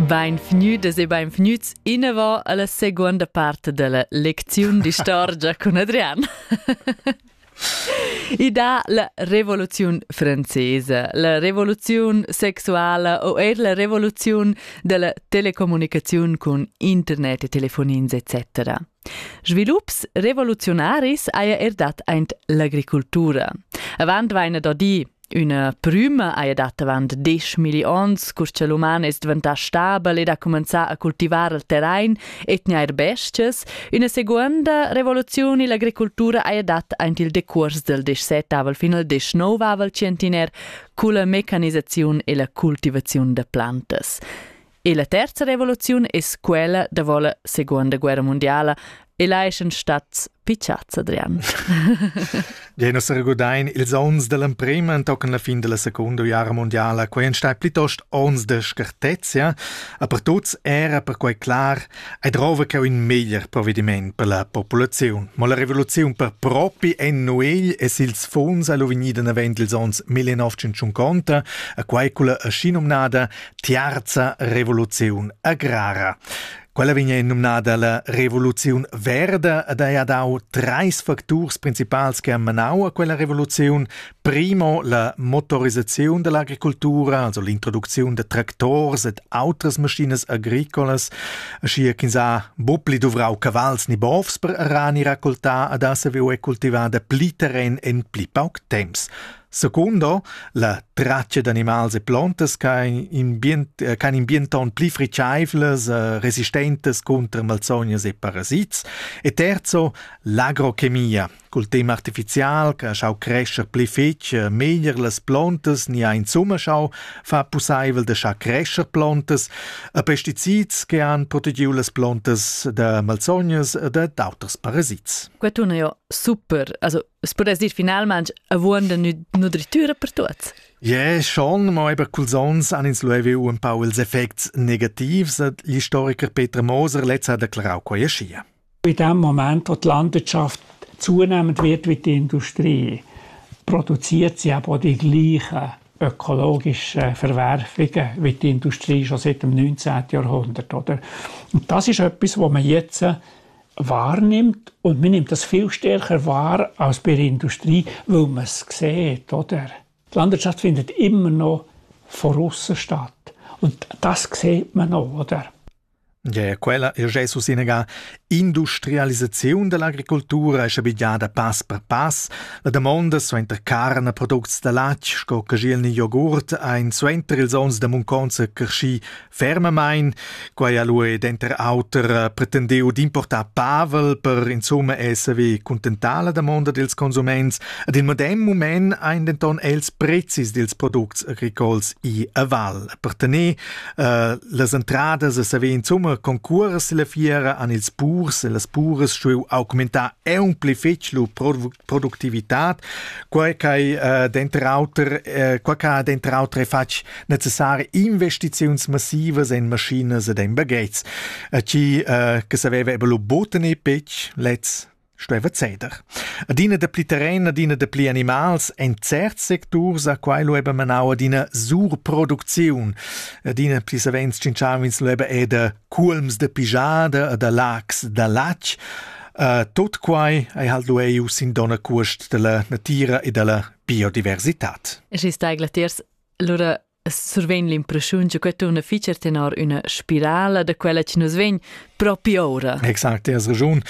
Beinvgnüdas e beinvgnüts inavant alla seguonda part della lecziun d'istorgia cun Adrian. I dà la revoluziun francesa, la revoluziun sexuala o eir la revoluziun della telecommunicaziun cun internet e telefonins etc. Svilups revoluziunaris haja er dat aint l'agricultura. Avant vaina da dir Üna prüma haja dat avant deschmilli ons, cur cha l'uman es dvantà stabel ed ha cumanzà a cultivar il terrain e tgnair bes-chas, üna seguonda revoluziun illa agricultura haja dat aint il decuors del deschsettavel fin al deschnouvavel tschientiner culla mecanisaziun e la cultivaziun da plantas. E la terza revoluziun es quella davo la seconda guerra mundiala e là eschan stats pitschats, Adrian. Ja, nus regodain ils ons dell'emprema antochen la fin della seconda guerra mondiala, quei ein stai plitost ons de scartezia, aber tuts era perquei clar, ei drova che un meglier provvediment per la popolazione. Ma la rivoluzione per propi en nuegl es ils funds allo vegnida navend ils ons 1950, a quai culla aschi nomnada Tiarza revoluziun agrara. Quella vegna numnada la revoluziun verda ed ha dau treis facturs principals che han manau a quella revoluziun. Primo, la motorisaziun dell'agricultura, also l'introducziun de tractors ed outras maschinas agricolas, aschia ch'ins ha buppli duvrau cavals ni bovs per arani raccoltar ad ha saviu cultivar de pli terren en pli pauc temps. Secondo, la traccia d'animals e plantas ch'han in, bient, eh, ch'han in bienton pli friceivlas, eh, resistentes contro malsognas e parasits. E terzo, l'agrochemia. Col tema artificial, che ha schau crescer pli fetg, eh, meglier las plantas ni ha insomma schau fa pusseivel de schau crescer plantas, a pesticids che han protegiu las plantas da malsognas e da d'auters parasits. Questo è super, also Es pudess dir finalmain avuond da nudritura per tuots. Yeah, schon, ma eben culs ons han ins luevi un pau ils effects negativs, hat l'historiker Peter Moser letztes hat erklärt, quai schia. In dem Moment, wo die Landwirtschaft zunehmend wird wie die Industrie, produziert sie eben auch die gleichen ökologischen Verwerfungen wie die Industrie schon seit dem 19. Jahrhundert. Oder? Und das ist etwas, was man jetzt wahrnimmt und man nimmt das viel stärker wahr als bei der Industrie, weil man es sieht, oder? Die Landwirtschaft findet immer noch von aussen statt. Und das sieht man auch, oder? Ja, ja, quella è Jesus inega industrialisaziun dell'agricoltura è bigliada pass per pass. La domanda suenter carne products da latg sco cagiel ni jogurt ein suenter ils onns da munconza cresci fermamain. Quai ha lui denter auter pretendiu d'importar Pavel per insumma esser vi contentar la damonda dils consuments. Ad il medem moment ein denton els prezis dils products agricols i a Val. Per tenere uh, las entradas a saver insumma concurs la fiera an ils purs e las puras stueu augmentar un pli fetg lu productivitat, quai che uh, denter auter uh, quai che denter auter è fatg necessari investiziuns massivas en maschinas ed en bagets. A chi eh, che saveva ebe lo boten e pec lez stueva ceder. Adina de pli terren, adina de pli animals, en certs secturs a quai lo eba manau adina surproducziun. Adina pli savens cinciavins lo eba eda culms de pijada, da lax, da lac. Uh, tot quai ei halt lo eiu sin dona cuost della natira e della biodiversità. E si sta glatters Allura survegn l'impressiun che quei turna fitg tenor üna spirala da quella che nus vegn propi ora. Exakt, das Region.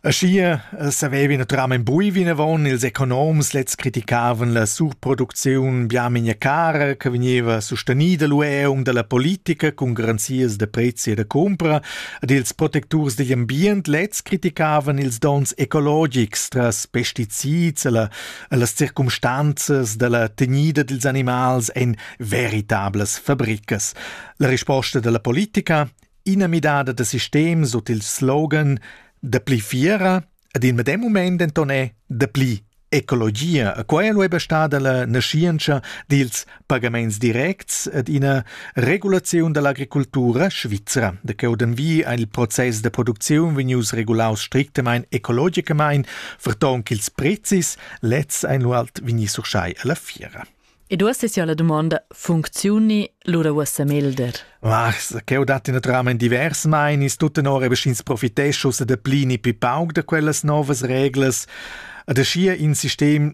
Schier savevi naturam in bui vinavon ils economs lez criticavan la surproducziun biaminja cara che veniva sustenida l'ueung dalla politica con garanzias da prezzi e da compra ed ils protecturs digl ambient lez criticavan ils dons ecologics tras pesticids e la Las circumstanzas dalla tegnida dils animals ein veritablas fabricas. La risposta dalla politica, ina midada da sistem sut il slogan dapli fiera ed in medem moment denton è dapli ecologia. Quello è stada la nascienza dils pagamaints directs ed ina regulaziun dall'agricultura svizra. De cheu d'envi ha il process da producziun vegnius regulaus strictamain ecologicamein, ferton ch'ils prezis lezs ein lu alt vegni surschai alla fiera. Ed uossa sia la dumonda, funcziuni lura uossa melder? Ah, cheu dat naturalmein divers meinis, tuttenora beschins profiteschus e de plini pi pauc da quellas novas reglas. Ad aschia in sistem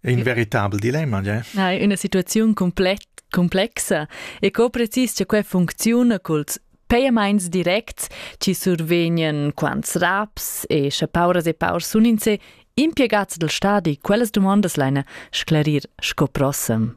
È in veritabel dilemma, ja? Hai una situazione completa complexa e co precis che quella funziona culs payaments directs ci survegnan quants raps e sche pauras e paurs sun in se impiegats del stadi quellas domandas leina sclarir sco prossem.